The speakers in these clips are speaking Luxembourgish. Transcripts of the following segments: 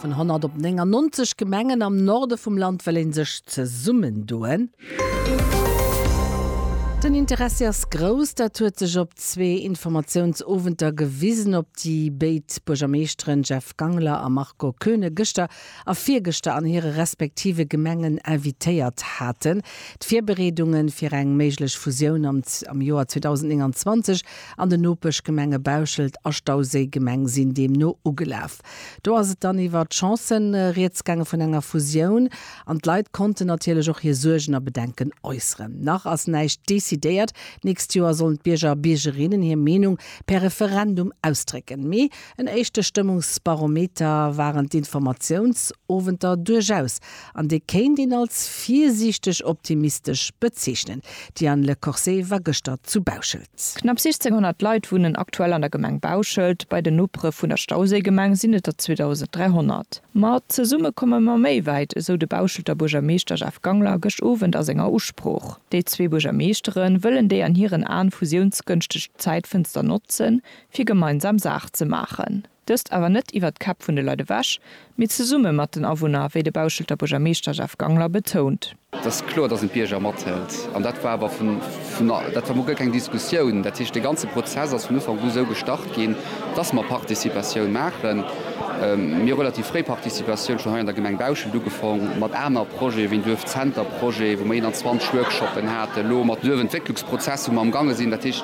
Vun 100 op 99 Gemengen am Norde vum Land wëll ee sech zesummendoen. Den Interessi ass grouss, dat huet sech op zwee Informatiounsowenter gewisen, op déi béid Buergermeeschteren Jeff Gangler a Marco Koeune gëschter a virgëschter an hire respektive Gemengen invitéiert haten. D'Virbereedunge fir eng méiglech Fusioun am Joer 2029 An den Nopeschgemenge Bauschelt a Stauséi, Gemeng, sinn deemno ugelaf. Do ass et dann iwwer d'Chancen rieds gaange vun enger Fusioun an d'Leit konnten natierlech och hir Suergen a Bedenken äusseren. Nach ass näischt decidéiert. D'nächst Joer sollen d'Bierger a Biergerinnen hir Meenung per Referendum ausdrécken. Mee en éischte Stëmmungsbarometer waren d'Informatiounsowenter duerchaus an dee kéint een als virsiichteg optimistesch bezeechnen. D'Diane Le Corset war gëschter zu Bauschelt. Knapp 1600 Leit wunnen aktuell an der Gemeng Bauschelt, bei den Nopere vun der Stauséigemeng sinn et der 2300. Ma zesumme komme mer méi wäit, esou de Bauschelter Buergermeeschter Jeff Gangler gëscht Owend a senger Usprooch. Déi zwee Buergermeeschtere wëllen déi an hiren Aen fusiounsgënschteg Zäitfënster notzen, fir gemeinsam Saach ze maachen. Dëst awer net iwwert d'Käpp vun de Leit ewech, mee zesumme mat den Awunner, wéi de Bauschelter Buergermeeschter Jeff Gangler betount. Et ass kloer, datt een d'Bierger mathëlt. An dat war awer vun, dat war mol guer keng Diskussioun. Dat heescht, dee ganze Prozess ass vun Ufank u esou gestart ginn, datt mer Participatioun maachen. Mir hu relativ fréi Participatioun schonn hei an der Gemeng Bauschelt ugefaang, mat aner Projete wéi en Duerfzenter-Projet, wou mer 21 Workshoppen haten, elo mat Duerfentwécklungsprozesser, wou mer amgaange sinn. Dat heescht,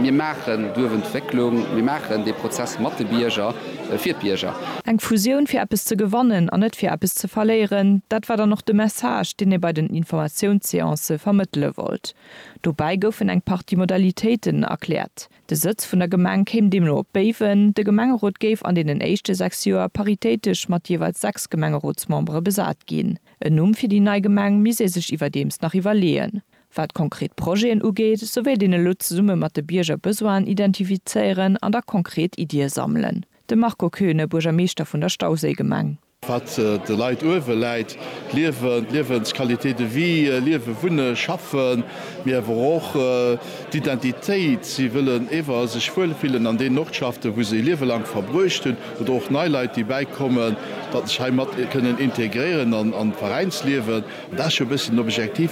Mir maachen d'Uewentwécklung, mir maachen dee Prozess mat de Bierger, fir d'Bierger. Eng Fusioun fir eppes ze gewannen an net fir eppes ze verléieren, dat war dann och de Message, deen ee bei den Informatiounsseancë vermëttele wollt. Dobäi goufen eng Partie Modalitéiten erkläert. De Sëtz vun der Gemeng kéim deemno op Béiwen. De Gemengerot géif an deenen éischte sechs Joer paritéitesch mat jeeweils sechs Gemengerotsmembere besat ginn. En Numm fir déi nei Gemeng misst ee sech iwwerdeems nach iwwerleeën. Wat konkret Projeten ugeet, sou wéilt een elo zesumme mat de Bierger Besoinen identifizéieren an da konkret Iddie sammelen. De Marco Koeune, Buergermeeschter vun der Stauséigemeng. Wat de Leit uewe läit, d'Liewen, d'Liewensqualité de vie, liewen, wunnen, schaffen, mee awer och d'Identitéit. Si wëllen ewer sech wuel fillen an deenen Ortschaften, wou se e Liewe laang verbruecht hunn. Oder och nei Leit, déi bäikommen, datt sech hei mat kënnen integréieren an d'Veräinsliewen. Dat ass jo e bëssen den Objektiv.